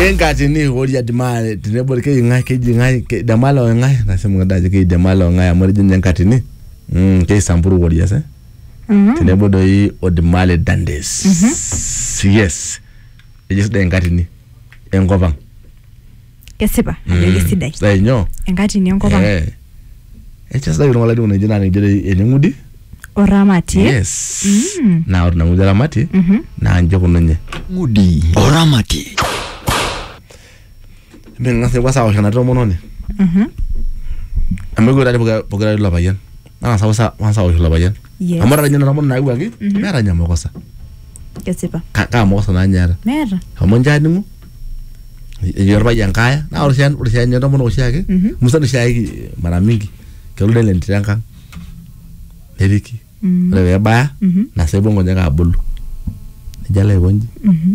enkati ni horia dimare tenebol keji ng'ae keji ng'ae ke- damala o ng'ae nasema ng'ada ajo keji damala o ng'ae amu etejo ninye enkatini mm, keisamburu warriors eh? tenebo doi o dimale dandes yes ejo sidai enkatini enkop ang kesipa ajo Mm, kesidai sidai nyoo enkatini enkop ang Eh. Echa sidai oltung'ani latii ng'oji naa ninche eneng'udi oramatie yes Mm. naa ore nang'udi aramati Mhm. naa nche kununye ng'udi oramati ming'as nepuo asawosh ena tomononi Mhm. amu ekwetari pokira pokira ilo payian nang'asa ausa nang'asa aosh ilo payian Yes. amu ata ninye nena omon naawuaki meeta ninye makosa kesipa Ka- kaa makosa naa ninye eeta meeta amu ninche aning'u ejo orpayian kaaya naa ore oshi- ore oshi ninye entomonok oshiake Mhm. musan oshiake mara mingi kelo nelo entito enkang neriki Mm. ore peebaya Mhm. nasepu nkonyek abulu nejo alo aikonji Mhm.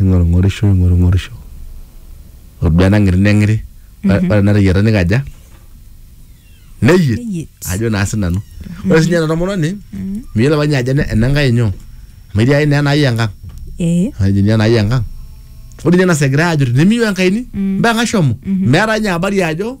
ning'orung'orisho ing'orung'orisho oduo enang'iri neng'iri Ore- ore enateyiata nikaja neyiet Neyiet. ajo naa sinanu ore sinye ena tomononi miyiolo apa ninye ajo ene- enenkai nyoo amu etii ake naa enai enkang ee ajo ninye enai enkang ore ninye nasa egirai ajut nimiyieu enkaini mpaka shomo meeta ninye habari ajo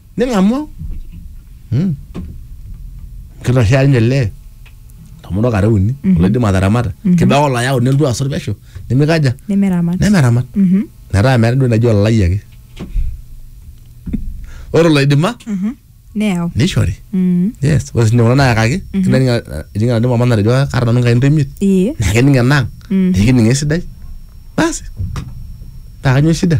ning'amu Hmm. kitoshea ninye lee tomono kare uni oloidim ataramata kibaa olayau nelotu asot pesho nimikaja nemeramat nemeramat Mhm. metaa meeta entoki naji olalai ake ore oloidima Mhm. neyau nishori Mhm. yes ore sinye kuna nayakaki kining eninga nadi mama natejo kaata nanu nkain toimiet Ee. naa kening enang Mhm. naa kening esidai basi naa kanyoo shida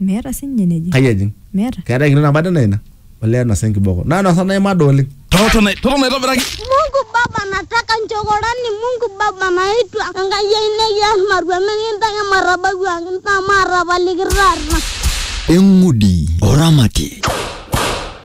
Meeta sininye eneji. kai ejing Meeta. keetae enkitoo nabo ade naa ina olee enosa enkiboko naa enosa naimada oleng Totona totona aitobiraki. Mungu Baba, nataka nchokorani. Mungu Baba, naitwa Enkai ai nikias matua mikintaki matabau ang intaa maatapaliki taata. Eng'udi oramati.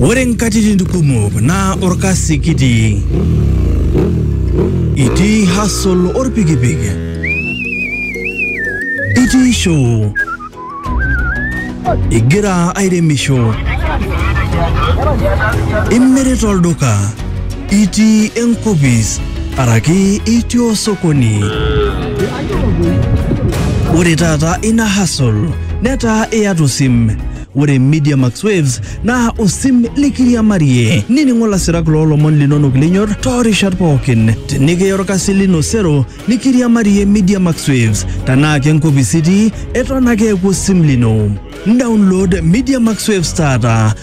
Ore nkatitin kumok naa orkasi kitii. Itii hustle orpikipik. Itii show. Igira airemisho. Imirita olduka. Itii enkopis araki itii osokoni. Ore taata ina hustle netaa iyata osim. Ore Media Max Waves naa osim likiriamarie nining'o lasirak loolomon linonok linyor toorishat pookin. Tenikiya orkasi lino sero nikiriamarie Media Max Waves. Tenaa kenkopis itii eton ake eeku osim lino. Download Media Max Waves taata.